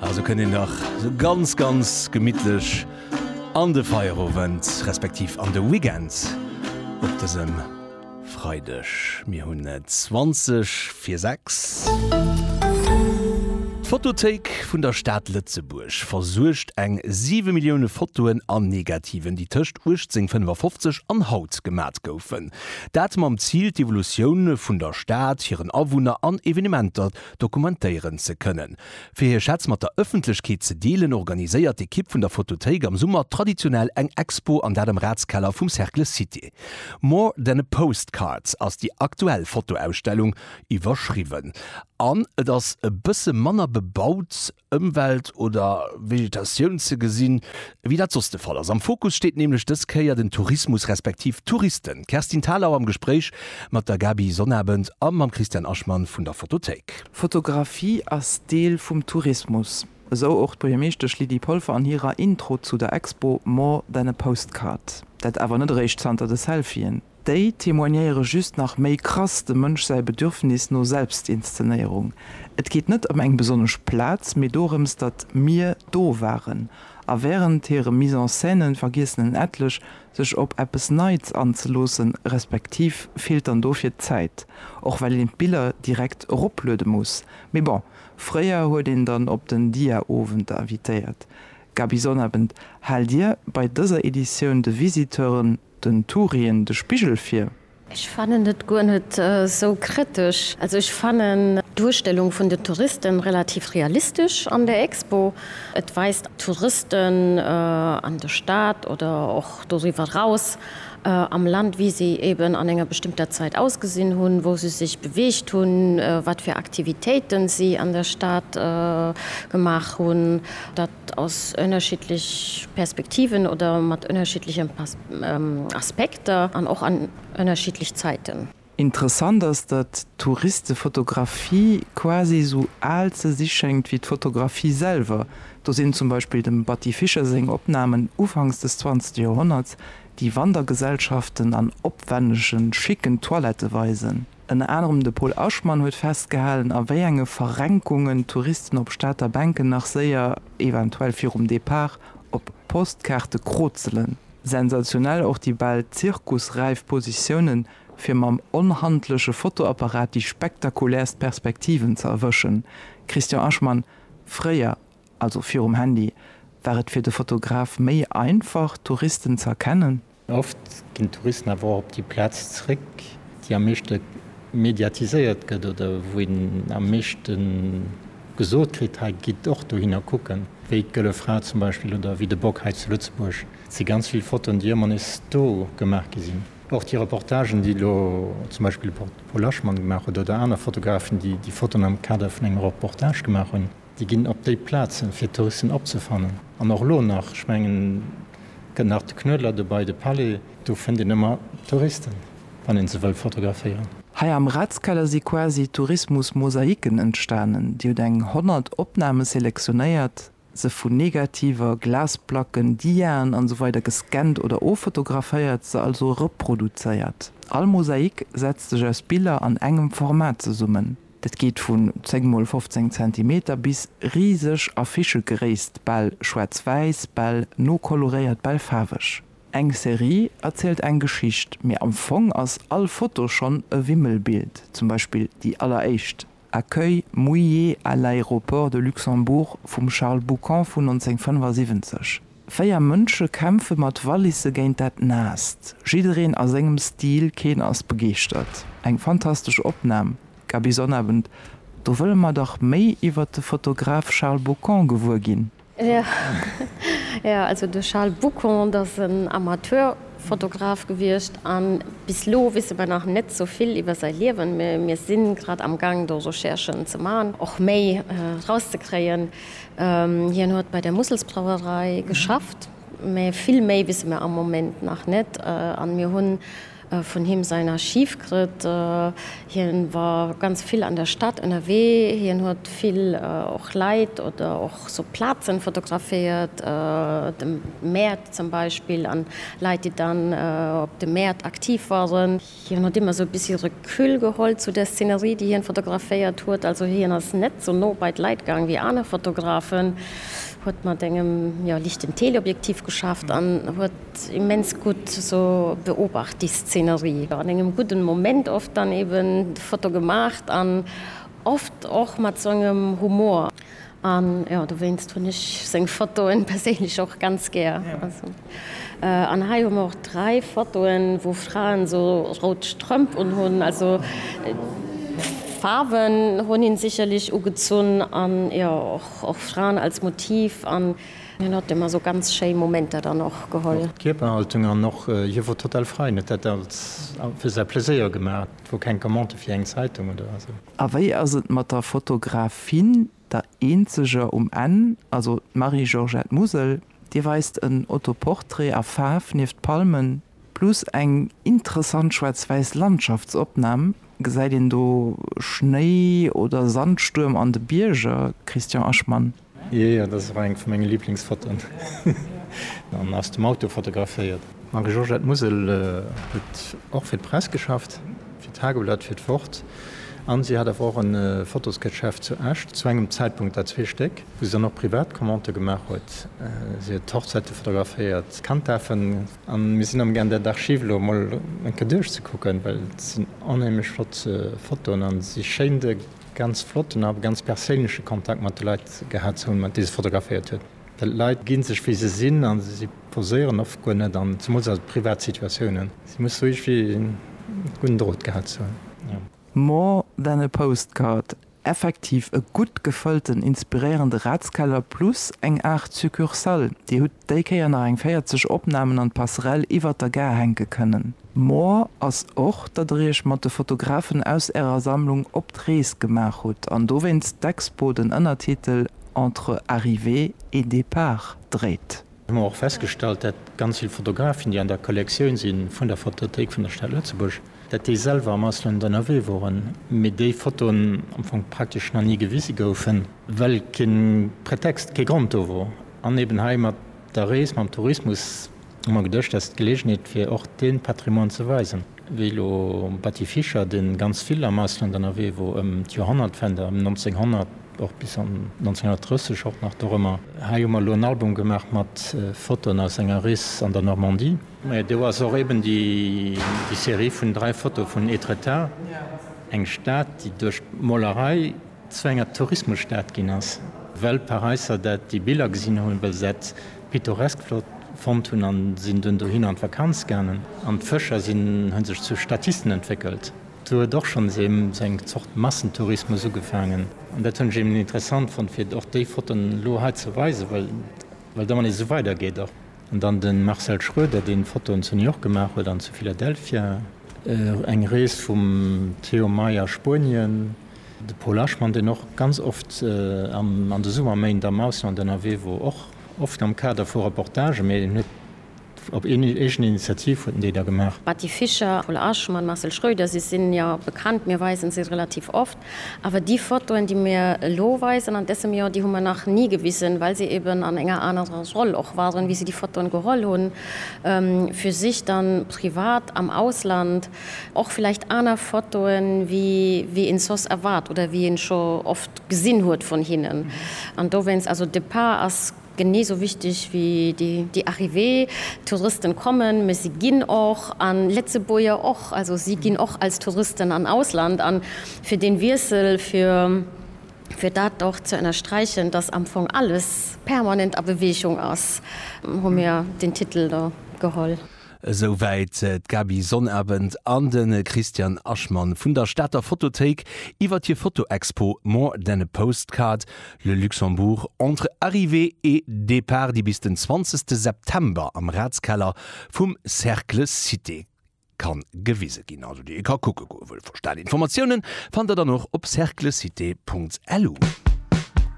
Ah, so kënnt een dach sou ganz, ganz gemittlech an de Feierowend, respektiv an de Weekend op dësem Freideg. Mir hunn et 20 vir 6. D'Fotothéik vun der Stad Lëtzebuerg versuergt eng 7 Millioune Fotoen an Negativen, déi tëscht 1855 an haut gemat goufen. Dat mam Zil, d'Evolutioun vun der Stad, hiren Awunner an Evenementer dokumentéieren ze kënnen. Fir hir Schätz mat der Ëffentlechkeet ze deelen, organiséiert d'Ekipp vun der Fotothéik am Summer traditionell eng Expo, an dat am Ratskeller vum Cercle Cité. More than a postcard ass déi aktuell Fotoausstellung iwwerschriwwen an et ass e bësse manner bebaut, Ëmwelt oder Vegetatioun ze gesinn, wéi dat soss de Fall ass. Am Fokus steet nämlech dës Kéier den Tourismus respektiv d'Touristen. D'Kerstin Thalau am Gespréich mat der Gaby Sonnabend a mam Christian Aschman vun der Fotothéik. Fotografie ass Deel vum Tourismus, esou och d'Buergermeeschtesch Lydie Polfer an hirer Intro zu der Expo More than a postcard. Dat awer net eréischt zanter de Selfien. Déi témoignéiere just nach méi krass dem Mënsch säi Bedürfnis no Selbstinszenéierung. Et geet net ëm eng besonnesch Plaz, mee dorëms, datt mir do waren. A wärend hire Mise-en-scènen vergiessen en etlech, sech op eppes Neits anzeloossen, respektiv feelt dann dofir d'Zäit, och well een d'Biller direkt eropluede muss. Mee bon, fréier huet een dann op den Dia-Owend invitéiert. Gaby Sonnabend, Haalt Dir bei dëser Editioun de Visiteuren Den Tureen de Spigel vir. Ech fannen et guer net sou kritesch. Also ech fannen d'Duerstellung vun den Touristen relativ realistesch an der Expo. Et weist Touristen an der Stad oder och doriwwer raus am Land wéi se eben an enger bestëmmter Zait ausgesinn hunn, wou se sech beweegt hunn, wat fir Aktivitéiten si an der Stad gemaach hunn. Dat ass ënnerschiddlech Perspektiven oder mat ënnerschiddleche Aspekter an och an ënnerschiddlech Zäiten. Interessant ass, datt d'Touristefotografie quasi esou al ze si schéngt wéi d'Fotografie selwer. Do sinn zum Beispill dem Batty Fischer seng Opnamen ufanks des zwanzegste Joerhonnerts, déi Wandergesellschaften an opwännege schicken Toilette weisen. Ënner anerem de Pol Aschmann huet festgehalen, a wéi enge Verrenkungen d'Touristen op Stater Bänken nach séier, eventuell virum Depart, op Postkaarte krozelen. Sensationell och déi bal zirkusräif Positiounen, fir mam onhandleche Fotoapparat déi spektakulärst Perspektiven ze erwëschen. Christian Aschmann, Fréier, also virum Handy, war et fir de Fotograf méi einfach, d'Touristen ze erkennen? Oft ginn d'Touristen awer och op déi Plaz zeréck, déi am meeschte mediatiséiert gëtt oder wou een am meeschte gesot kritt, hei gitt och dohinner kucken, wéi d'Gëlle Fra zum Beispill oder wéi de Bock hei zu Lëtzebuerg. Et si ganz vill Fotoen, déi ëmmer nees do gemaach gi sinn. Och déi Reportagen, déi elo zum Beispill de Paul Aschmann gemaach huet oder aner Fotografen, déi déi Fotoen am Kader vun engem Reportage gemaach hunn. Déi ginn op déi Plazen, fir d'Touristen opzefannen. An och elo nach, ech mengen, gëtt nach de Knuedler dobäi, de Palais. Do fënnt een ëmmer Touristen, wann ee se wëll fotograféieren. Hei am Ratskeller si quasi Tourismus-Mosaiken entstanen. Dir hutt eng 100 Opname selektionéiert, se vu Negativer, Glasplacken, Diaen an esou weider gescannt oder offotograféiert, se also reproduzéiert. All Mosaik setzt sech aus Biller an engem Format zesummen. Dat geet vun 10 mol 15 Zentimeter bis riseg Affichegréisst, bal schwaarz-wäiss, bal nokoloréiert, bal faarweg. Eng Serie erzielt eng Geschicht, mee am Fong ass all Foto schonn e Wimmelbild, zum Beispill déi alleréischt, Accueil mouillé à l'aéroport de Luxembourg vum Charles Boucant vun 1975. Véier Mënsche kämpfe mat Wallisse géint dat Naasst. Jiddereen a sengem Stil, keen ass begeeschtert. Eng fantastesch Opnam, Gaby Sonnabend. Do wëlle mer dach méi iwwert de Fotograf Charles Bocon gewuer ginn. Jo, also de Charles Bocon, dat ass en Amateurfotograf gewiescht a bis lo wisse mer nach net sou vill iwwer säi Liewen. Mir si grad am Gaang do Recherchen ze maachen, och méi rauszekréien. Hien huet bei der Musselsbrauerei geschafft, mä vill méi wisse mir am Moment nach net. An mir hunn vun him säin Archiv krëtt. Hien war ganz vill an der Stad ënnerwee. Hien huet vill och Leit oder och sou Plazen fotograféiert, de Mäert zum Beispill an Leit déi dann op de Mäert aktiv waren. Hien huet ëmmer esou e bessi Recul geholl zu der Szenerie, déi hien fotograféiert huet. Also hien ass net esou no bei d'Leit gaang wéi aner Fotografen, huet mat engem, jo, lichten Teleobjektiv geschafft an huet immens gutt esou beobacht, déi Szenerie, an engem gudden Moment oft dann eben d'Foto gemaacht an oft och mat esou engem Humor. An jo, dowéinst hunn ech seng Fotoen perséinlech och ganz gär. Also an hei hu mer och 3 Fotoen wou Fraen sou rout Strëmp un hunn. Also Faarwen hunn hin sicherlech ugezunn an jo och och Fraen als Motiv an hin huet emmer sou ganz schéi Momenter dann och geholl. Och d'Kierperhaltung an och hie wor total frei, en huet dat als fir säi Pleséier gemaach. Et wor keng Commande fir eng Zeitung oder esou. A wéi ass et mat der Fotografin, der eenzeger um Enn, also d'Marie-Georgette Musel. Dir weist en Autoportrait a Faarf nieft d'Palmen, plus eng interessant schwaarz-wäiss Landschaftsopnam, gesäit een do Schnéi oder Sandstuerm an de Bierger, Christian Aschman? Jee jee, dat ass och eng vu menge Liblingsfotoen, an aus dem Auto fotograféiert. D'Marie-Georgette Musel huet och fir d'Press geschafft, fir d'Tageblatt, fir d'Wort, an si hat awer och en Fotosgeschäft zu Esch, zu engem Zäitpunkt dat zwee Stéck, wou si dann och privat Commandë gemaach huet. Si huet d'Hochzäite fotograféiert, d'Kanddaafen, an mir sinn am Gaang där d'Archiv elo emol eng Kéier duerchzekucken, well et sinn onheemlech flott Fotoen an si schéin de. Ganz flotten a ganz perséinleche Kontakt mat de Leit gehat ze hunn, déi se fotograféiert huet. D'Leit gi sech wéi se sinn a si poséieren oft guer net an, zemools a privat Situatiounen. Si muss sou iergwéi en gudden Drot gehat ze hunn. More than a postcard, effektiv e gutt gefëllten, inspiréierende Ratskeller plus eng Aart Succursale. Dir hutt déi Kéier nach eng 40 Opnamen an d'Passerelle iwwert der Gare hänke kënnen. More ass och, datt der Iech mat de Fotografen aus Ärer Sammlung op d'Rees gemaach hutt an dowéinst d'Expo den Ënnertitel Entre arrivée et départ dréit. Mir hunn och festgestallt, dat ganz vill Fotografen, déi an der Kollektioun si vun der Fotothéik vun der Stad Lëtzebuerg, dat déi selwer am Ausland ënnerwee woren, mee déi Fotoen am Fong praktesch nach ni gewise goufen, well kee Pretext, kee Grond do wor an eeben hei mat der Rees, mam Tourismus, Hu mer geduecht, dat ass d'Gelegenheet fir och dee Patrimoine ze weisen, wéi elo Batty Fischer, dee ganz vill am Ausland ënnerwee wor, ëm d'Joerhonnertwende, ëm 1900 och bis an 1930 och nach dorëmmer. Hei hu mer elo en Album gemaach mat Fotoen aus enger Rees an der Normandie. Mä do ass och eben déi Serie vun dräi Fotoe vun Étretat, eng Stad, déi duerch d'Molerei zu enger Tourismusstad ginn ass, well Paräisser dat déi Biller gesinn hunn, well se dat pittoresk flott fonnt hunn an sinn dunn dohinner an d'Vakanz gaangen an d'Fëscher sinn hunn sech zu Statisten entwéckelt. Do huet och schonns ee seng Zort Massentourismus ugefaangen an dat hunn ech eben interessant fonnt fir och déi Fotoen elo hei ze weisen, well da wann ee sou weider geet och. An dann de Marcel Schroeder deen Fotoen zu New York gemaach huet an zu Philadelphia. Eng Rees vum Theo May a Spuenien. De Paul Aschmann, deen och ganz oft an de Summerméint am Ausland ënnerwee wor, och oft am Kader vu Reportagen, mee en huet op eegen Initiativ huet en déi da gemaach. D'Betty Fischer, Paul Aschmann, Marcel Schröder, si sinn jo bekannt, mir weisen se relativ oft, awer déi Fotoen, déi mir elo weisen an dësem Joer, déi hu mer nach ni gewisen, well se eben an enger anerer Roll och waren, wéi se déi Fotoen geholl hunn, fir sech dann privat am Ausland Och villäicht aner Fotoen, wéi een soss erwaart oder wéi een scho oft gesinn huet vun hinnen. An dowéinst, also Départ ass genee esou wichteg wéi déi Arrivée. Touristen kommen, mä si ginn och, an Letzebuerger och. Also si ginn och als Touristen an Ausland. An fir deen Wiessel, fir dat och ze ënnersträichen, dass am Fong alles permanent a Bewegung ass, hu mir deen Titel do geholl. Esou wäit d'Gaby Sonnabend an de Christian Aschmann vun der Stater Fotothéik iwwer hir Fotoexpo More than a postcard, Le Luxembourg entre arrivée et départ, déi bis den 20 September am Ratskeller vum Cercle Cité ka gewise ginn, also déi ee ka kucke goe wëll. VerstaanInformatiounen fannt der dann och op cerclecité.lu.